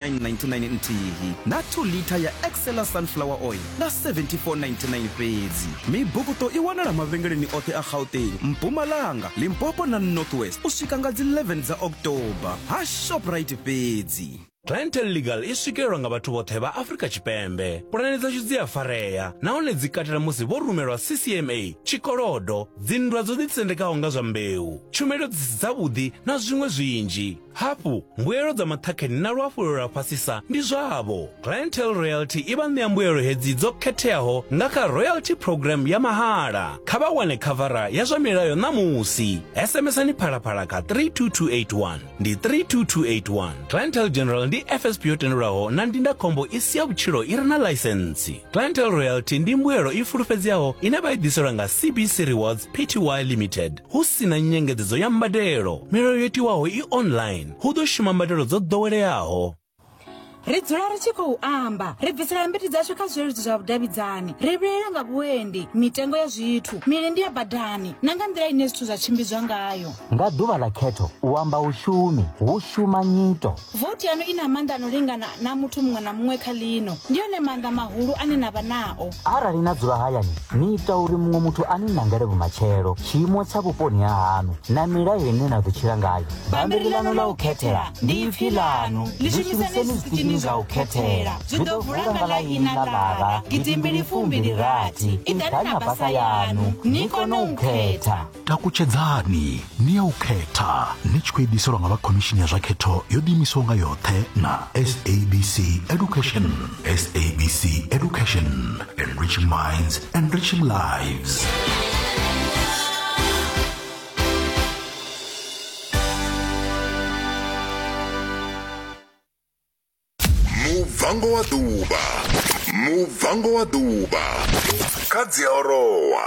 999 nthihi na 2 litha ya excela sunflower oil nga 7499 fhedzi mibukuto i wanala mavhengeleni oṱhe a gauteng mpumalanga limpopo na north west u swika nga dzi 11 dza october ha shoprite fhedzi clientele legal i swikelelwa nga vhathu vhoṱhe vha afrika tshipembe pulane dzashu dzi a farea nahone dzi katela musi vho rumelwa ccma tshikolodo dzinndwa dzo ḓitsendekaho nga zwa mbeu tshumelo dzi si dzavhuḓi na zwiṅwe zwinzhi Hafhu, mbuelo dza maṱhakheni na luhafhulelo lwa fhasisa ndi zwavho. Clientele Royalty i vha ṋea mbuelo hedzi dzo khetheaho nga kha Royalty Programme ya mahala. Kha vha wane khavara ya zwa milayo ṋamusi. SMS-ani Phalaphala kha 32281. Ndi 32281. Clientele General ndi FSP yo tendelwaho na ndindakhombo i si ya vhutshilo i re na ḽaisentsi. Clientele Royalty ndi mbuelo i fulufhedzeaho ine vha i ḓiselwa nga CBC Rewards Pty Limited. hu si na nyengedzedzo ya mbadelo milayo yo tiwaho i online hu ḓo shuma mbadelo dzo ḓoweleaho ri dzula ri tshi khou amba ri bvisela mbiti dzashu kha zwileludzi zwa vhudavhidzani ri vhilela nga vhuendi mitengo ya zwithu milindi ya badani na nga nḓila ine zwithu zwa tshimbidzwa ngayo nga ḓuvha ḽa khetho u amba u shumi hu shuma nyito Vothi yaṋu i na maanḓa a no lingana na a muthu muṅwe na muṅwe kha ḽino. Ndi one maanḓa mahulu ane na vha nao. Arali na dzula hayani, ni ita uri muṅwe muthu a ni nangele vhumatshelo, tshiimo tsha vhuponi ha haṋu na milayo ine na ḓo tshila ngayo. Bammbiri ḽaṋu ḽa u khethela ndi ipfi ḽaṋu. Ḽi shumiseni zwiṱitshini zwa u khethela. Zwi ḓo vula nga ḽa ina ḽa ḽara gidimbili fumbili rathi. Iḓani na basa yaṋu ni kone u khetha. takutshedzani ni ya u khetha ni tshi khou ediselwa nga vha khomishini ya zwa khetho yo ḓiimisaho nga yoṱhe na sabc education sabc education enriching minds enriching lives mubvango wa ḓuvha mubvango wa ḓuvha kha dziaorowa